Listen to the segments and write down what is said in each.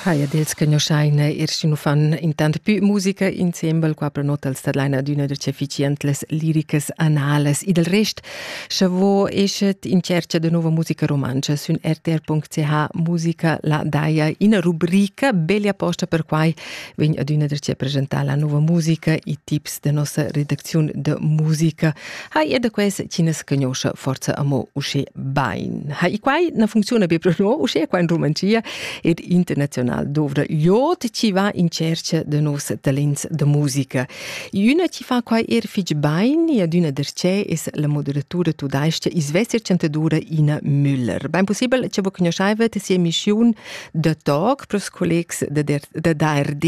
Haia dels che noschaina ir sino fan intant pü musica insembel qua prenotals da laina d'üna da efficientes liricas anales. E del rest, scha vo eschet in cerca da nova musica romancha sün rtr.ch musica la daia ina rubrica bella apposta per quai vegn ad üna da presentare la nova musica e tips de nossa redacziun de musica ha er da quest Chines cugnoscha forza amo usche bain. Ha i quai na funcziona be pro no, usche qua in Romancia ed internazional dovra jot chi va in cerca de nos talents de musica. Üna chi fa quai er fich bain e ad üna derce es la moderatura tudaischia Isvesir Chantadura Ina Müller. Bein possibel che vos conosceivet sia missiun de talk pros collegs de, de, de DRD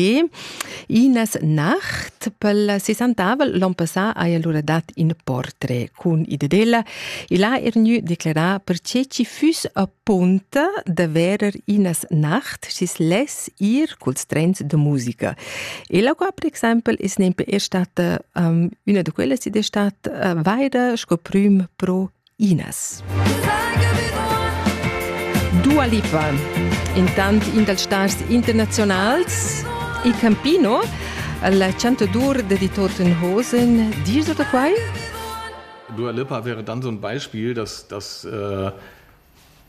Ines Nacht pel sessantavel l'on passà haja lura dat ün portret cun id ed ella. Il ha er gnü declerà perche chi füss apunta da verer Ines Nacht schi's less ir culs trens da musica. E la qua per exaimpel es nempe er stata, um, üna da quellas id es stat, uh, vaira sco prüm pro Inas. Dua Lipa, intant in dals stars internazionals e Campino, la chantadur de Tottenhosen, dir da quai? Dua Lipa wäre dann so ein Beispiel, dass, dass äh,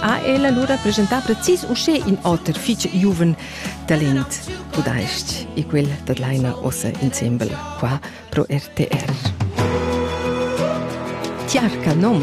ha el allura presentà precis uschè in oter fitg giuven talent, tudais e quel dat laina ossa insembel qua pro RTR. Tiarca nom!